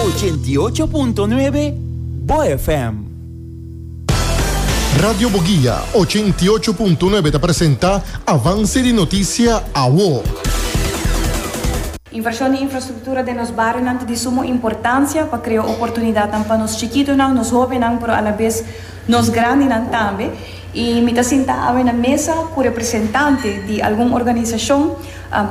Ochenta y ocho punto nuebe Bo FM. Radio Boguia ochenta y ocho punto nuebe ta presenta Avance di Noticia Awo. Invershon di infrastruktura den nos barionan ta di sumo importansia pa krea oportunidatnan pa nos chikitunan, nos hobennan pero alabes nos grandinan tambe. I mi ta sinta awe na mesa ku representante di algun organisashon.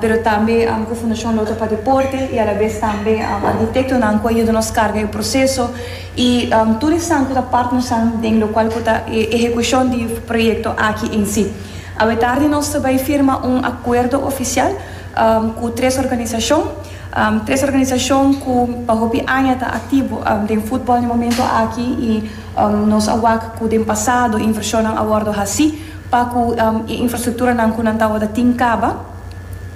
pero tambe ku Fundashon Loto pa Deporte i alabes tambe arhitektonan ku a yuda nos karga e proseso i tur esnan ku ta partnernan den lokual ku ta e ehekushon di proyekto aki en si. Awe tardi nos ta bai firma un akuerdo ofisial ku tres organisashon, tres organisashon ku pa hopi aña ta aktivo den futbòl den momentu aki i nos a wak ku den pasado invershonnan a wòrdu hasi. Pa ku e infrastrukturanan ku nan tabata tin kaba,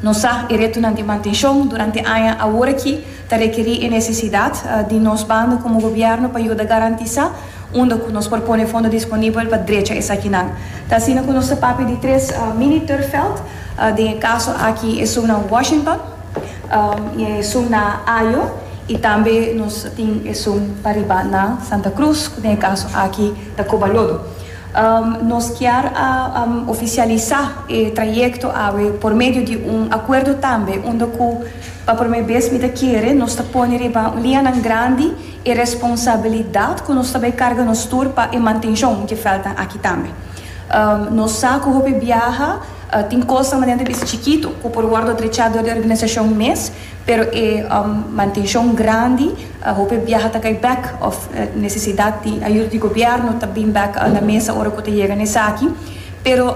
nos sa e retonan di mantenshon durante aña aworakí ta rekerí e nesesidat di nos banda komo gobièrnu pa yuda garantisá unda ku nos por pone fondo disponibel pa drecha esakinan. Ta asina ku nos ta papia di tres mini-turfveld, den e kaso aki esun na Washington, esun na Ajo i tambe nos tin esun pa riba na Santa Cruz, ku den e kaso aki ta Cobalodo. Nos kier a oficialisa e trayecto awe por medio di un acuerdo tambe unda cu pa prome bes mi ta kere nos ta pone riba lianan grandi e responsabilidad cu nos ta bay carga nos tur pa e mantencion dje veldnan aki tambe. Nos sa cu hopi biaha tin cosnan manera ta bisa chikito cu por wordo drecha door di organisacion mes pero e mantencion grandi Hopi biaha ta kai bek of nesesidat di ayuda di gobièrnu ta bin bek na mesa ora ku ta yega na esaki. Pero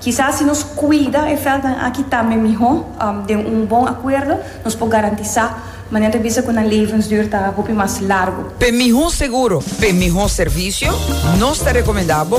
kisas si nos kuida e vèltnan aki tambe mihó den un bon akuerdo nos por garantisá manera ta bisa ku nan levensduur ta hopi mas largu. P'e mihó seguro, p'e mihó servisio, nos ta rekomendá bo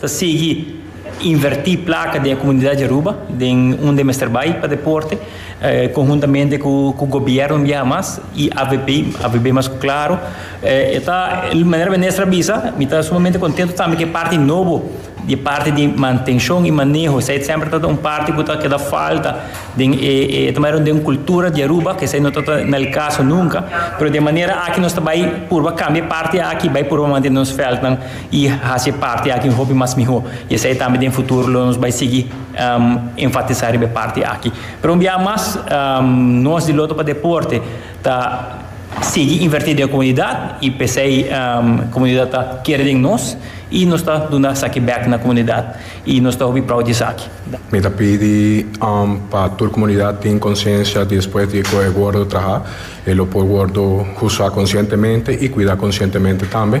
Ta sigui invertí plaka den e komunidat di Aruba, den unda e mester bai pa deporte, konhuntamente ku gobièrnu un biaha mas i avp, avp mas ku Claro. E ta manera Minister a bisa, mi ta sumamente kontentu tambe ku e parti nobo di e parti di mantenshon i maneho, esei semper ta un parti ku ta keda falta den e e ta manera den un kultura di Aruba ku esei no ta ta nel kaso nunka. Pero di e manera aki nos ta bai purba kambia e parti aki, bai purba mantene nos vèldnan y haci e parti aki hopi mas miho y esai tambe den futuro lo nos bai sigui enfatisa riba e parti aki. Pero un biaha mas nos di Lotto pa Deporte ta sigui inverti den e comunidad y p'esai comunidad ta kere den nos y nos ta duna esaki back na comunidad y nos ta hopi proud di esaki. Mi ta pidi pa tur comunidad tin conciencia di despues di cu e wordo traha e lo por wordo usa conscientemente y cuida conscientemente tambe.